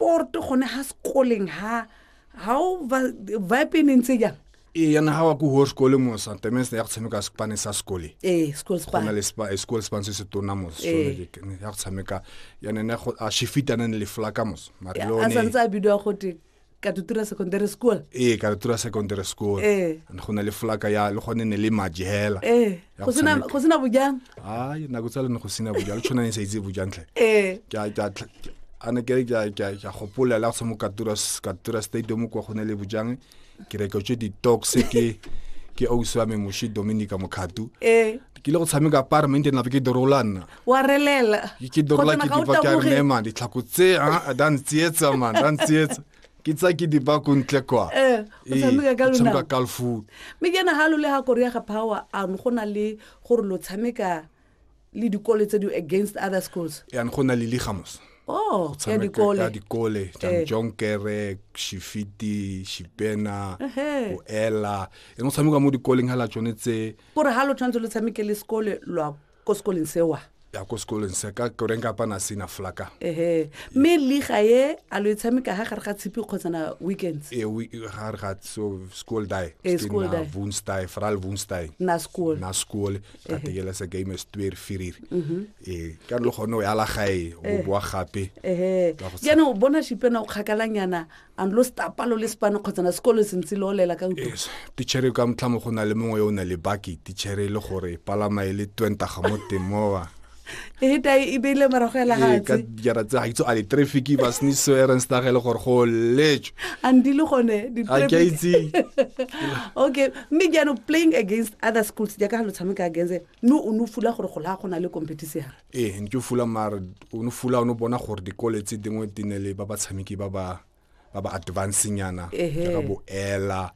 sport gone ha sekoleng ha ha o vibe e neng tse jang ee yana ga wa ko ho sekole mo santemese ya go tshameka sepane sa sekole ee school span gona le spa school span se se tona mo sone ya go tshameka yana ne go a shifita ne le flaka mo mare lo ne a santsa bidwa go te katutura secondary school ee katutura secondary school ee go na le flaka ya le gone ne le majela ee ya go go sena tshameka. go sena bojang ai nako tsa lene go sena bojang le tshwana ne sa itse bojang tlhe ee ke a- ke a tlh- ke- a ne kere ke a- ke a- ke a gopola la tshomo katura s- katura stadium kwa go ne le bojang ke reke tse ditox ke ke ausi wa me moshi dominica mokgatu ee ke ile go tshameka parment nape ke dorola nna wa relela ke ke dorola ke dipa ke a re nema ditlhako tse a a da ntsietsa man da ntsietsa ke tsa ke dipa ko ntle kwa Eh, o Ee, tshameka ka o tshameka lonao. ka lefung mme ke nagalo le ga korea ga power ano go na le gore lo tshameka le dikole tse di against other schools yan go na le ligamos oh ya tshameka dikole ka dikole Eh. janjonkere shifiti shipena Ehe. o ela ene o tshameka mo dikoleng hela tsone tse gore ga lo tshwanetse lo tshameke le sekole lwa ko sekoleng se wa ya ko sekoleng se ka koreng ka pana sina flaka ehe mme liga ye a lo e tshameka ha gare ga tshipi kgotsana weekends e we ga re ga so school die Eh, school na die. woensdae veral woensdae na school na skool ka tegela se game is twee vier e ka lo gone o ya la gae o boa gape ehe Ka go tsha- jaanong o bona shipena o kgakalanyana and lo stapa lo le sepane kgotsa na sekolo se ntse lo lela ka ntlo tichere ka motlhamo go na le mongwe yo o na le baki tichere e le gore e palama e le twentaga mo teng mowa e ta e beile morago ya legatshe ka dijara tse ga itse a le traffic ba sniso erenstag e le gore go letswe and di le gone di a ke itse okay mme jaanong playing against other schools jaaka ga lo tshameka against no o no fula gore go la go na le competition ee ne ke fula mare o ne fula o ne bona gore dikole tse dingwe di ne le ba batshameki ba ba ba ba advancing yana jaaka bo ela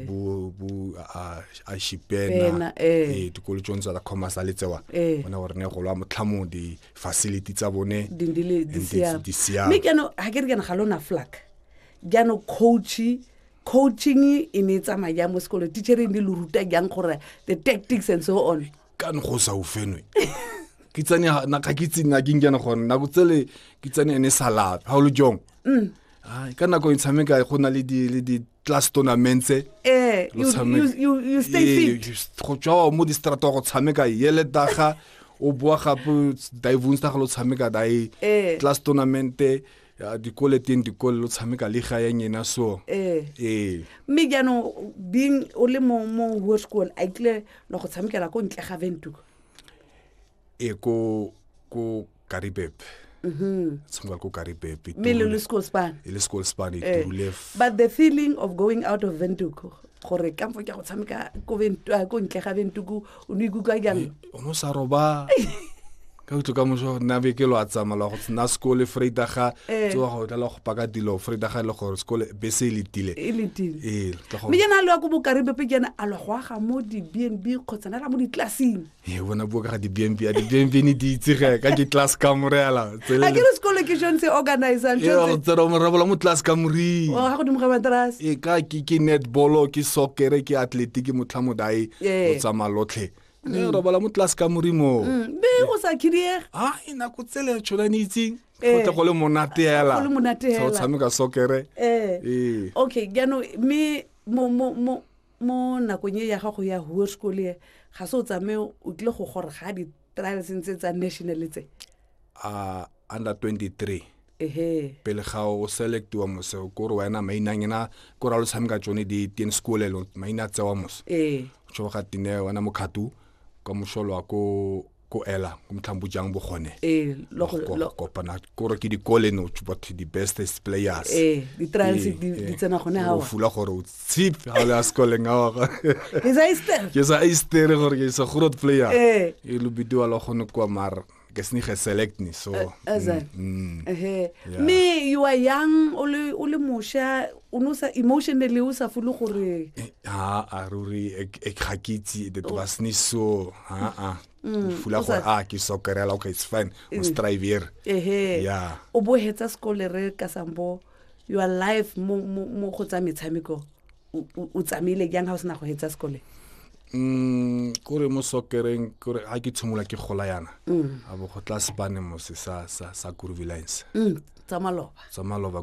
bo bo a shipena ee dikolo tsone tsa commerce a le tsewa bona gore ne go lwa motlhamong di-facility tsa bone di siame mme keno ga ke re kena ga lona flak jaanong coachy coaching e ne e tsamaya jang mo sekolong teacher e ne le ruta jang gore the tactics and so on ka ne go sa o fenwe ke tsane ha- na ga ke itse na ke nkena gone nako tsele ke tsane ene sa lape ga o le jong Mm. Ai, ka nako e tshameka go na le di- le di-class tournaments Eh, Lo you, tshameka. you, you, you stay Ee, fit. you st- go tswa mo distrata go tshameka yele daga o boa gape divonsta ga lo tshameka dae Eh. class tournamente ya dikole teng dikole lo tshameka le ga ya nyena so ee ee mme jaanong being o le mo mo ho school a kile la go tshamekela ko ntle ga ventuko e ko ko karibep tshameka ko karibep e mme le turule- le school span e le school span e Eh, turule f- but the feeling of going out of ventuko gore kampo ke a go tshameka ko Ventu- ah, ko ntle ga ventuku o ne ikutlwa jang o no sa roba ka utlo ka moso nna be ke lo a tsamala go tsena sekole freida ga eh. tsoa go tla go paka dilo freida ga e le gore sekole be se le tile e le tile ee me jana a lwa ko bokaribe pe jana a lwa go aga mo di bnb kgotsa na la mo di classing ee bona bua ka ga di bnb a di bnb ne di itsege ka ke class ka morela a ke re sekolo ke shone se organizang tsero morabola mo tlase ka morii oh, ga godimo ga matrase e ka ke netball ke sokere ke athletic ke motlha modae o tsamaya lotlhe mm. e robola mo tlase ka morii moo mm. be go sa khidiega a e nako tsele tshona ne itseng go eh. tle go le monate hela go tshameka sokere eh. ee okay jaanong mme mo mo mo mo nakong e ya gago ya hoer school e ga se o tsamaye o tlile go gore ga di trials ntse tsa national tse a under 23 ehe pele ga o selectiwa mose o kore wena mainang ena ko ra lo tshameka tsone di ten sekolelo maina tsewa mose ee tsho ga tine wena mokhatu ka mosholo wa ko ko ela ko motlhambo jang bogone ee lo go- Go- lo- kopana kore ke dikole no batho the bestest players ee di-trials Ee, di ee. di tsena gone Gore o gawa fula gore o Zip, ha le a sekole nga wa ga. Ke sa ister. Ke sa ister gore ke sa gurot player. Eh. E lu bidiwa lo gone kwa mar. Ke sni ge select ni so. Eh, Azan. Eh, mm, mm. Eh. Me you are young, o le o le mosha, o no sa emotionally o sa fulu gore. Ha a ruri e ga ke itse the was ni so. Ha a. Mm, fula gore a ah, ke sokerela okay it's fine. O strive here. Eh. Yeah. O bo hetsa sekole re ka sambo. your life mo mo mo go tsa metshameko o- o o tsamaile jang ga o sena go etsa sekole Mm, kore mo sokereng kore ga ke tshimola ke gola yana a bo go tla sepane mose sa sa sa kurvilance mm tsa maloba sa maloba